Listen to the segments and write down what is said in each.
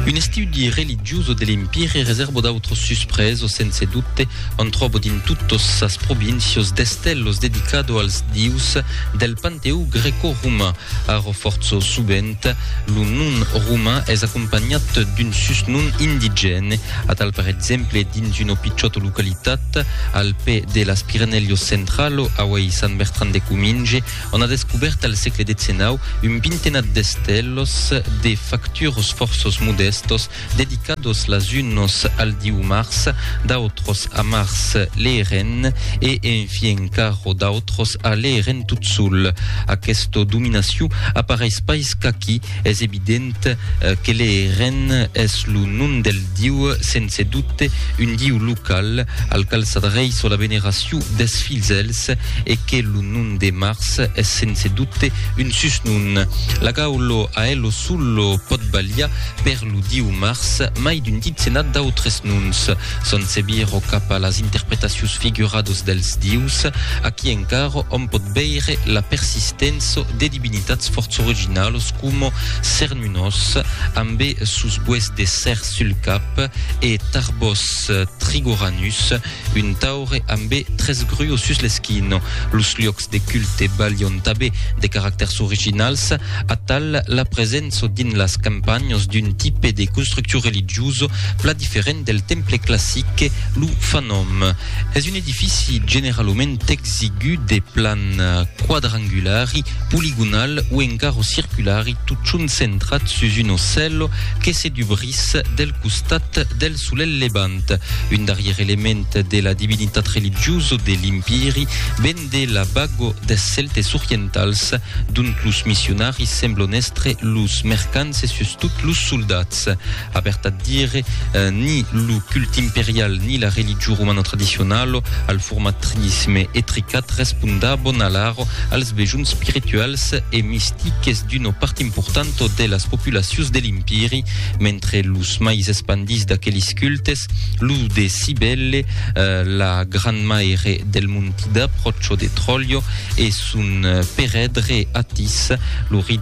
Un estudi religioso de l'Empire reserbo d'autros suspresos sense dubte, on tròbo dins totos sas provincios d'estelos dedicado als dius del panteó greco-roman. Arò fòrtso sovent lo nom roman es acompanhat d'un susnom indigène, atal per exemple dins una pichòta localitat al pè de las Pirenèlios centralo, auei Sant Bertran de Cominge, On a descobèrt al sègle xix un vintenat d'estelos de factures fòrços modèstos dedicados las unos al diu Mars, d'autros a Mars l'Eeren e en fi encara d'autros a l'Eeren tot sol. Aquesta dominacion apareis pas qu'aquí, Es evident que le Ren es lo nom del Diu, sense dubte un Diu local, al qual s'adreiço la veneracion des filzèls, e que lo nom de Mars es sense dubte un susnom. La gaullo a elo sullo pòt balhar per lo Diu Mars, mai d'un ditzenat d'autres noms. Son se viro cap a las interpretacions figurados dels Dius, aquí encara òm pòt veire la persistènço de Divinitats fòrts originalos coma Cernunnos, amb es sos boets de cèr sul cap, e Tarbos Trigoranus, un taure amb es tres gruos sus l'esquina. Los luòcs de culte balhon tanben de caractèrs originals, atal la presença dins las campanhas d'un tipe de construccion religiosa plan diferent del temple classic, lo fanòm. Es una. Edifici generalament exigu de plan quadrangulari, poligonal o encara circulari totjorn centrat sus un ocèlo que se dubrís del costat del solelh levant, un darrièr element de la divinitat religiosa de l'Impèri ven de la vaga des Celtes orientals, dont los missionaris semblon èstre los mercants e sustot los soldats. A vertat dire, ni lo culte imperial ni la religion romana tradicionala, al format trinisme e tricat, respondavan alara als bejons spirituals e mistiques d'una part importanta de las populacions de l'Impèri, mentre los mais espandits d'aqueles cultes, lo de Cybèle, la grandmaire del Montida, pròcha de Tròlha, e son perèdre Atis, lo rei.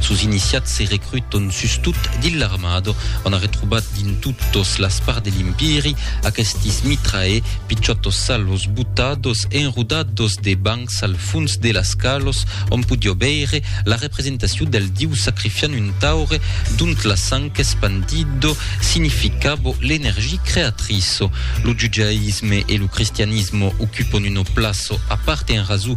Sos iniciats se recruton sustot dins l'armada, ont a retrobat dins totos las parts de l'Impèri aquestis mitrae, pichòtos salos botados e enrodados de bancs al fons de las calos, ont podió veire la representacion del diu sacrifiant un taure dont la sang espandida significava l'energia creatriça. Lo judaïsme e lo cristianisme ocupon una plaça a part en rasó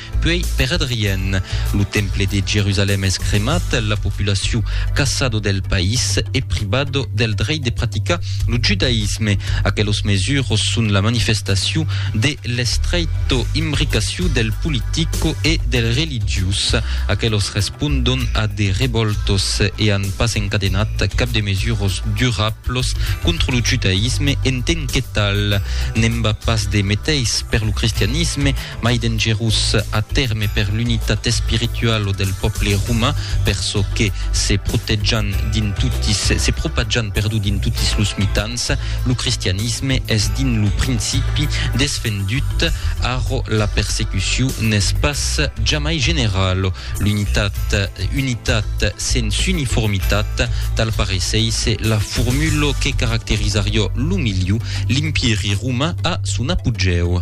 Puèi, per Adrien, lo temple de Jerusalèm es cremat, la populacion caçado del país e privado del dreit de practicar lo judaïsme. Aquelos mesuros son la manifestacion de l'estreito imbricacion del politico e del religiós. Aquelos respondon a de revòltos e an pas encadenat cap de mesuros durablos contra lo judaïsme en ten que tal. N'en va pas de meteis per lo cristianisme, mai dengerós a tèrme per l'unitat espirituala del pòble roman, per çò que, se protejan dins totis, se propajan, perdó, dins totis los mitans, lo cristianisme es dins lo principi desfendut, arro la persecucion n'es pas jamai generala. L'unitat, unitat sens uniformitat, tal pareissésse la formula que caracterizariá lo milieu, l'Impièri roman a son apogèu.